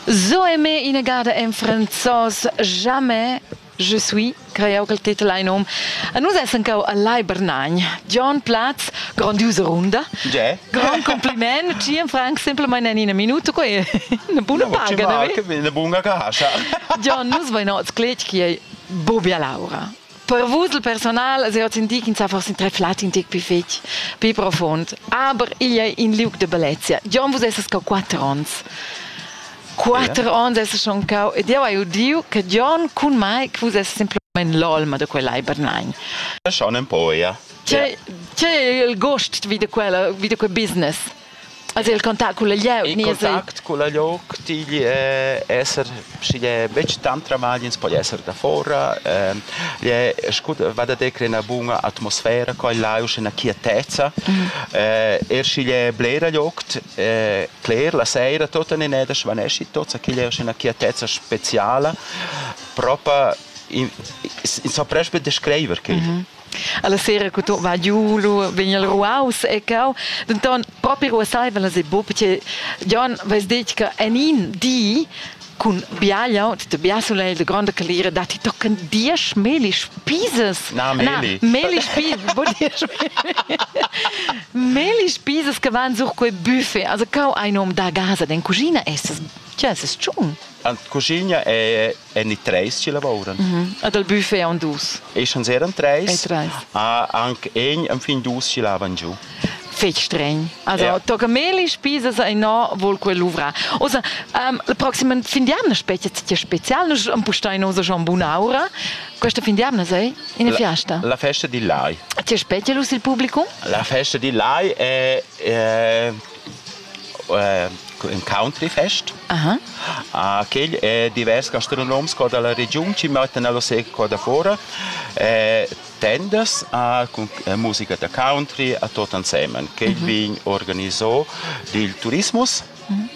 So aimé inagada en franzos jamais je suis creiau che il titel ha in num. A nus essan cau a Lai Bernagn. John Platz, grandiusa runda. Ge. Grand compliment. Ci en Frank semplamain en ina minuta quei. Una buna paga, ne? Una bunga cascia. John, nus vain oz clet chi ei Bobia Laura. Per vus il personal se hozzindi ch'ins ha forse treflat in tec pi fetg, pi profond. Aber igl ei in liug de bellezia. Gion, vus esses ca quatter ons. Quatter ons esses schon cau ed jeu hai udiu che Gion cun mei che vus esses semplamain l'olma de quell'ei Bernain. Schon un po, ja. C'è, c'è il gost vi de quella, vi de quel business? Has il contact cun il lieu? Il contact cun il lieu digl è esser, sch'igl è betg tant tramagl, ins po esser da fora. Ehm, igl è scu va da decre ena buna atmosfera qua e là, uschè ena quietezza. Er sch'igl è bler liugt, cler, la seira tot en eneda svanesci tots, igl è uschè ena quietezza speziala. Propa, ins sa prest be descreiver chegl. Alla sera che tu va giu, lu vegn el ruaus e cau. Denton propi ruasaiva las e buca perché Jon vess detg che en in di cun biagliau, de bia sulegl, de gronda calira, da ti tocken diesch Melis Pieses. Na, Meli. Na, Melis Pieses, bo diesch Melis Pieses che van sur quei buffet. Also cau ein um da casa, den cucina es. Tja, es es tschun. La cucina è en i treis ci lavoran. Mm -hmm. Ad al buffet on dus. E schans eran treis. treis. A anc egn am fin dus ci lavan giu. Fech streng. Also ja. tocca meli spisas e no vol quel luvra. Osa, um, la proxima fin di anna specie ti special, nus am pustai nosa schon buna aura. Questa fin di anna sei in la, fiesta. La festa di Lai. Ti specie lus il publicum? La festa di Lai è, è ün countryfest. Aha. Ah, quel è divers gastronoms qua dalla regiun chi mettan alla sera qua da fora eh, tendas ah, cun eh, musica da country a tot ansemen. Quel mhm. vegn organizò dil turismus. Mhm.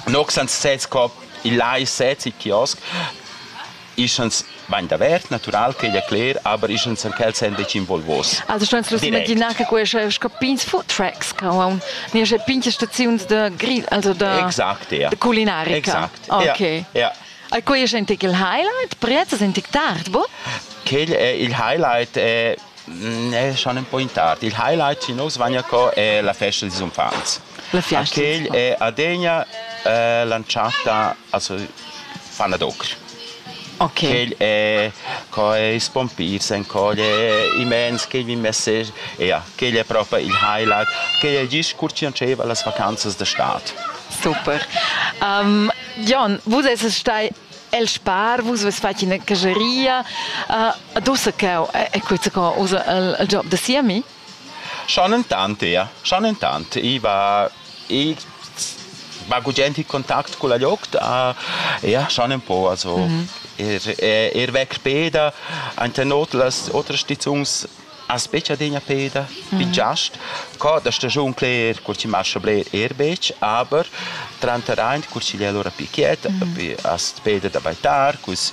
Nox ans sez qua il lai sez il kiosk Ischans bain davert, natural ch'igl è cler, aber ischans er ch'els èn betg involvos. Els ston s'imaginar che quai sco pigns food trucks che haun niesch pigns staziuns da grill, also da, exact, ja. da culinarica. Exact. Okay. Ja, ja. E quai è in tic il highlight? Priazzas in tic tard, boh? Quel è il highlight, è, è schon ein po in tard. Il highlight ci nos vagna co è la festa dils unfants. La fiasta. Quel è adegna eh, lanciata Also paradox. Okay. Quegl è quais pompis en quegl è immens, quegl mi message, ja, quegl è proper il highlight, quegl è il discurs che diceva las vacanzas de stad. Super. Um, Jon, vus esses stai el spar, vus ves fat ina caseria. Uh, dosa cau, è questo usa il, il job da siami? Schon entant eir, schon entant. I va i va gugent in contact culla gliocht, a eir schon ün po, also ir ir vecr peda, aint in ot las otras stizuns as betg adegna peda, bin giast. Co da stagiun cler cur chi mascha bler eir betg, aber tranter aint cur chi l'è lura più quiet, as peda da baitar, culs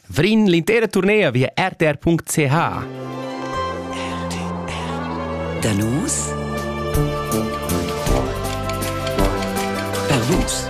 Vrin l'intera turnea via rtr.ch. Da nus per vus.